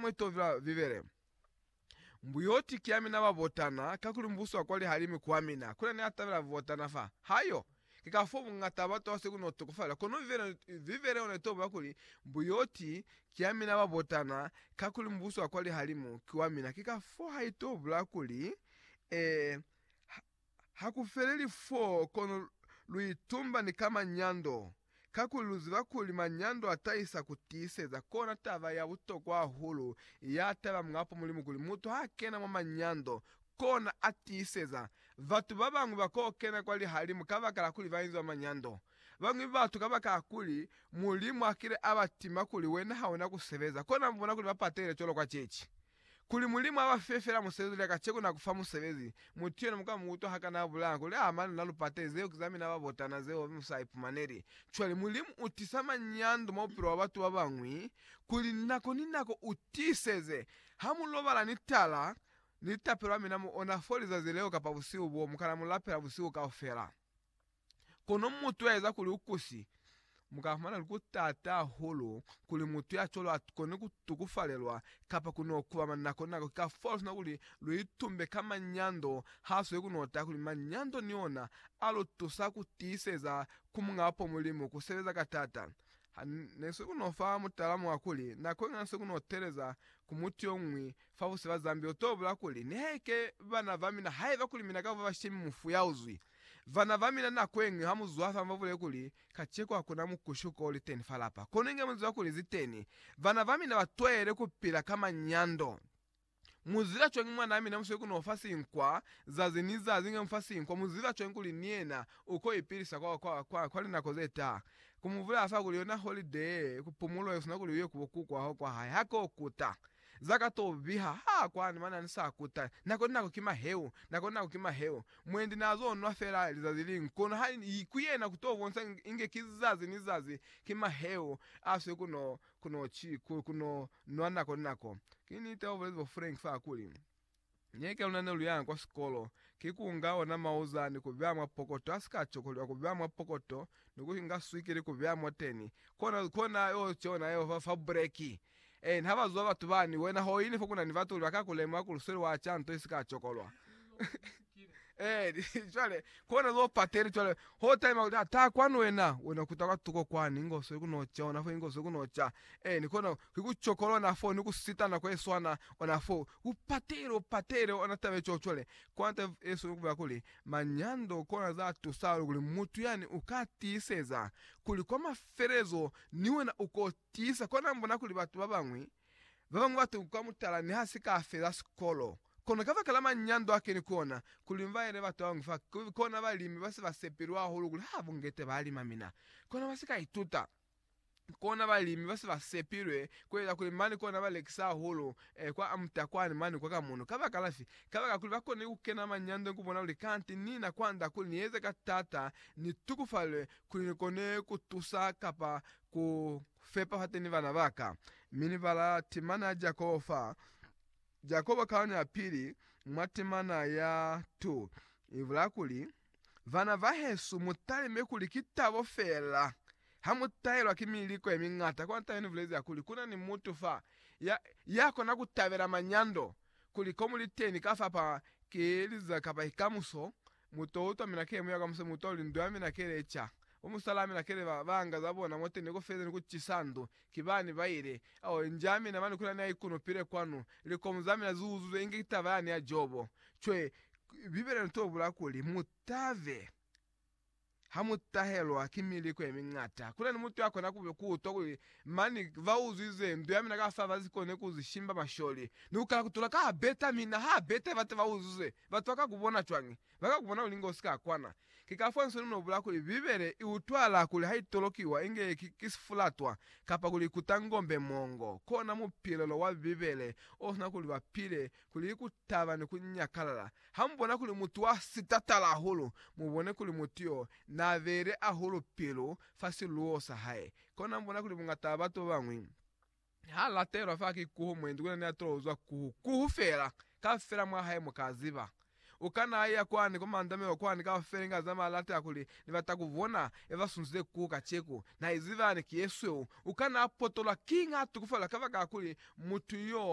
mwe to vila Bibele. Mbuyoti ki yamina ba botana, kakuli Mubuso wa kwa lihalimu ku wamina. Kuna ni a tabela botana fa. Ha yo. Ki ka fo bungata batu ba seku no tokofalela. Kono Bibele, Bibele yona ito bula kuli, Mbuyoti ki yamina ba botana, kakuli Mubuso wa kwa lihalimu ki wamina. Ki ka fo ha ito bula kuli, Eh, ha, Ha ku feleli fo, kono lu itumba ni ka manyando, kakuli lu ziba kuli manyando a tahisa ku tiiseza. Kona taba ya butokwa hahulu ya taba mwapo Mulimu kuli mutu ha kena mwa manyando, kona a tiiseza. Batu ba bañwi ba ko kena kwa lihalimu kabakala kuli ba inzwa manyando. Bañwi batu kabakala kuli Mulimu a kile a ba tima kuli wena ha una ku sebeza, kona mu bona kuli ba patehile cwalo kwa ceci. Kuli Mulimu abafe fela musebezi lya kaceko na kufa musebezi, mutu yena muka muutwa hakana abulaya kuli aa mane na lupate, zeo ki zamina babotana zeo musa aipumaneli. Cwale Mulimu utisa manyando mwa bupilo bwa batu babañwi kuli nako ni nako utiiseze, ha mulobala ni tala, ni litapelo amina mu ona fo lizazi leo kapa busihu boo, mukana mulapela busihu kaufela. Kono mutu ya eza kuli u kusi, mu ka fumana kuli ku taata hahulu kuli mutu ya cwalo a kone ku tukufalelwa kapa ku n'o kubama nako ni nako. Ki kafao sina kuli lu itumbe ka manyando, ha sweli ku n'o taha kuli manyando ni ona a lu tusa ku tiiseza ku Muñ'a Apo Mulimu, ku sebeza ka taata. Ha ne sweli ku n'o fa mutala mwa kuli, nako ye ñata sweli ku n'o teeleza ku mutu yo ñwi fa busi ba Zambia, u t'o bulaa kuli, Ni haike bana ba mina haiba kuli mina ka ba bashemi mufu ya uzwi. Vana ba mina nako yeñwi ha mu zwafa mu ba bulele kuli, Kaceko hakuna mukushuko o li teni fa lapa. Kono inge mu ziba kuli zi teni. Bana ba mina ba twahele ku pila ka manyando. Mu ziba cwañi mwanaa mina musweli ku n'o fa sinkwa zazi ni zazi? Inge mu fa sinkwa, mu ziba cwañi kuli ni yena u k'o ipilisa kwa, kwa, kwa, kwa linako ze taha? Ku mu bulela fa kuli yona holiday, kupumulo, ye sina kuli u ye ku bo kuku wa hao kwa hae, ha k'o kuta. Za ka to biha ha kwani mana ni sa kuta. Nako ni nako ki maheu, nako ni nako ki maheu. Mwendi na zo nwa fela lizazi liñwi, kono ha i ku yena ku to bonsa inge ki zazi ni zazi, ki maheu a swe ku no, ku no, ku no nwa nako ni nako. Ki niti bao bulezi bo Frank fa kuli, Nyeke luna ne lu yanga kwa sikolo ki ku nga ona mauza ni ku beya mwa pokoto, a si ka cokolwa ku beya mwa pokoto, ni ku inga swikiri ku beya moteni. Kona, kona yo ki ona yeo fa, fa bureki. Amen. Ha ba zwa batu bani, wena ho ini fo ku na ni batu kuli ba ka ku lemuha kuli u sweli wa ca nto i si ka cokolwa. Amen. Cwale, kona zo pateni cwale, ho taima kuli, Ha, taha kwani wena. Wena kuta kwa tuko kwani, inge u sweli ku no ca, ona fo, inge u sweli ku no ca. Amen. Kona, ki ku cokolwa ona fo, ni ku sitana kwe swana ona fo. Ku patele, u patele ona taba eco cwale. Kona taba yesweli ku bela kuli, manyando kona za tusa hahulu kuli mutu yani u ka tiiseza kuli kwa mafelelezo ni wena u ko tiisa. Kona mbona kuli batu ba bañwi, ba bañwi ba tuka mutala niha si ka feza sikolo. Kono kabakala manyando a keni ku ona, ku limbaele batu ba bañwi fa kona balimi ba si ba sepilwe hahulu kuli ha bungete ba lima mina. Kona ba si ka ituta. kona balimi base ba sepilwe kueza kuli mane kona ba lekisa hahulu eh, kwa amutakwani mane kwa kamuno. Kabakala fi? Kabakala kuli bakonile kukena manyando nikubona kuli kanti nina kwanda kuli nieze ka tata, nitukufalwe kuli nikone kutusa kapa ku fepa fateni bana baka. Mi ni bala timana ya Jakobo fa. Jakoba kaone ya pili mwa temana ya 2 ibulaya kuli, Vana bahesu, mutalime kuli ki tabo feela hamutahelwa ki miliko yemiñata. Kwa ntahe nibulezi kuli kuna ni mutu fa ya yakona kutabela manyando, kuli komu liteni ka fa pa ki liza kapa ki kamuso, Mu to utwa mina kele muya kamuso mu twa lindwa mina kele ca bo musala mina kele ba banga za bona mwateni ku feza ni ku cisa ndu. Kibani ba ile a o enja mina mani kuli ani a ikunupile kwanu. Likomu za mina zi uzuzwe inge ki taba yani ya Jobo. Cwe, Bibele ntobula kuli, Mu tabe. Ha mu tahelwa ki miliko ye miñata, ku na ni mutu ya kona ku utwa kuli, Mani, ba uzwize ndu ya mina ka fa, ba si kone ku zwi shimba masholi, ni ku kala ku tula ka ha beta. Mi na ha beta ye bata ba uzwize, batu ba ka ku bona cwañi? Ba ka ku bona kuli inge u si ka kwana. Ki ka fo Nsoni no bula kuli, Bibele i utwala kuli ha i tolokiwa inge ki, ki sifulatwa, kapa kuli i kuta ngombe mongo. Kona mupilelo wa Bibele o sina kuli ba pile Kuli ku taba ni ku nyakalala ha mu bona kuli mutu wa si tatala hahulu, mu bone kuli mutu yo n'a beile hahulu pilu fa siluwo sa hae. Kona mu bona kuli bungata ba batu ba bañwi ha latelwa fa ki kuhu mwendi ku na ni a tolo uzwa kuhu, kuhu fela. Kaufela mwa hae mu ka ziba. U kana a iya kwani kwa mandamelo kwani kaufela inge a zamaya a latela kuli, Ni bata ku bona ya ba sunzile kuhu kaceku. Na iziba yani ki ye sweu. U kana a potolwa kiñi ha tukufalelwa kabakala kuli mutu yo